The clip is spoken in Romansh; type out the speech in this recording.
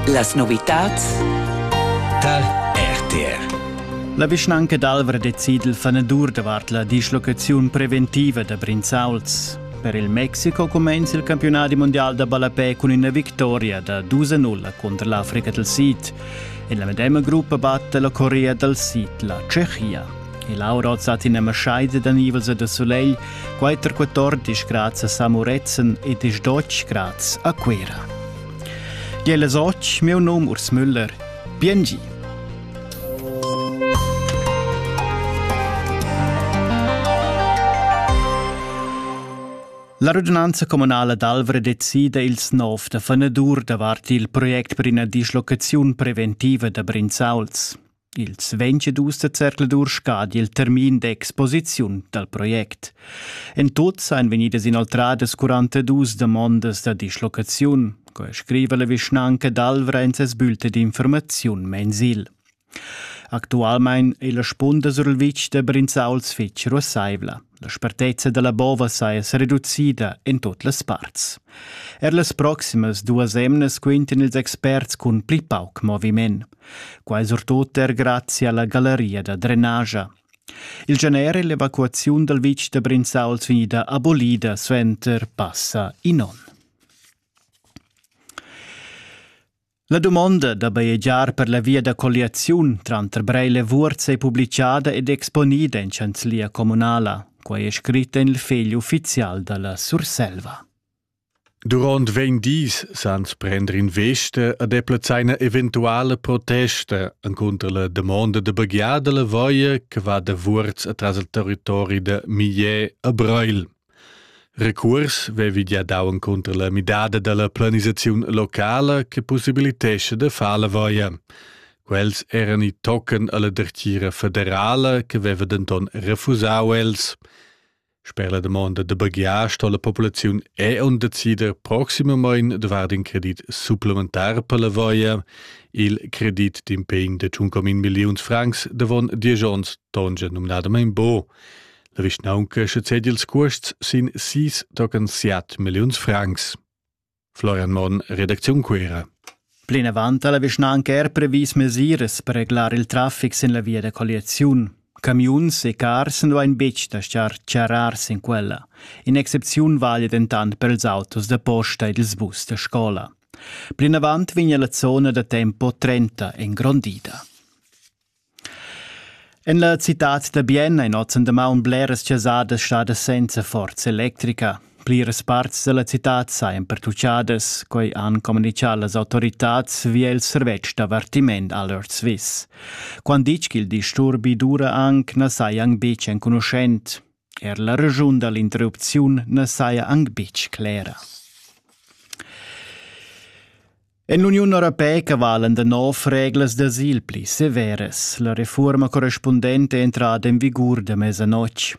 Las novitads tal RTR La vischnanca d'Alvra decid il fanedur davart la dislocaziun preventiva da Brinzauls. Per il Mexico cumenza il campionat mondial da ballapè cun ina victoria da 2-0 contro l'Africa del Sid. En la medema gruppa batte la Corea del Sid la Tschechia. E Laura hoz hat üna maschaida da nivels e da sulegl, quatter quatordisch graz a Samuretzen e desdotsch graz a Cuera. Jella soch, meu nom Urs Müller. Biengi! La radunanza communala d'Alvra decida ils nov da fanadur davart il project per ina dislocaziun preventiva da Brinzauls. Ils 22 zercladur scadi il termin d'exposiziun dal project. En tut seien vegnidas inoltradas 42 damondas da dislocaziun, co scriva la vischnanca d'Alvra en ses bülte d'informaziun mensil. Actualmein è la spunda sur il vitg da Brinzauls fitg russaivla. La spartezza dalla bova saja sereducida en tut las parts. Er las proximas duas emnas quintan ils experts cun pli pauc moviment. Quai surtut er grazie alla galleria da drenagia. Il gener è l'evacuaziun dal vitg da Brinzauls finida abolida suenter passa in onn. La dumonda da bajegiar per la via da colliaziun tranter Breil e Vuorz è publichada ed exponida in chanzlia communala. Quai è scrit en il fegl uffizial da la Surselva. Durant vegn dis sans prender in veste a deplazaina eventuale protesta encunter la domanda de baghiada la voia che va da Vuorz atras il territori de Millet a Breil. Recuors vevi gia dau encunter la midada dalla planisaziun locala che possibilitescha da far la voia. Quels eran i tochen alla dertgira federala che veva denton refusau els. Sper la domanda da baghiar sto la populaziun è on decider proximamein davart in credit supplementar per la voia, il credit d'impegn de 1,1 milliuns francs davon diesch onns tongia numnadamein bo. La vischnaunca sezedi ils cuosts sin sis tocan siat milliuns francs. Florian Monn, Redaktion Cuera. Plinavant ha la vischnanca er previs mesiras per reglar il traffic sin la via da colliaziun. Camiuns e cars nu ein betg da schar charrar sin quella. In'excepziun vale dentant per ils autos da posta ed ils bus da scola. Plinavant vegna la zona da tempo 30 engrondida. En la citad da Bienna è ozendi damaun bleras chasadas stadas senza forza electrica. Pliras parts da la citad sajan pertuchadas, quai han communitgà las autoritads via il servetsch d'avertiment Alert Swiss. Quant ditg ch'il disturbi dura anc na saja anc betg enconuschent. Er la raschun da l'interrupziun na saja anc betg clera. En l'Uniun Europeica valen da nov reglas d'asil pli severas. La reforma correspundente è entrada en vigur da mesa notg.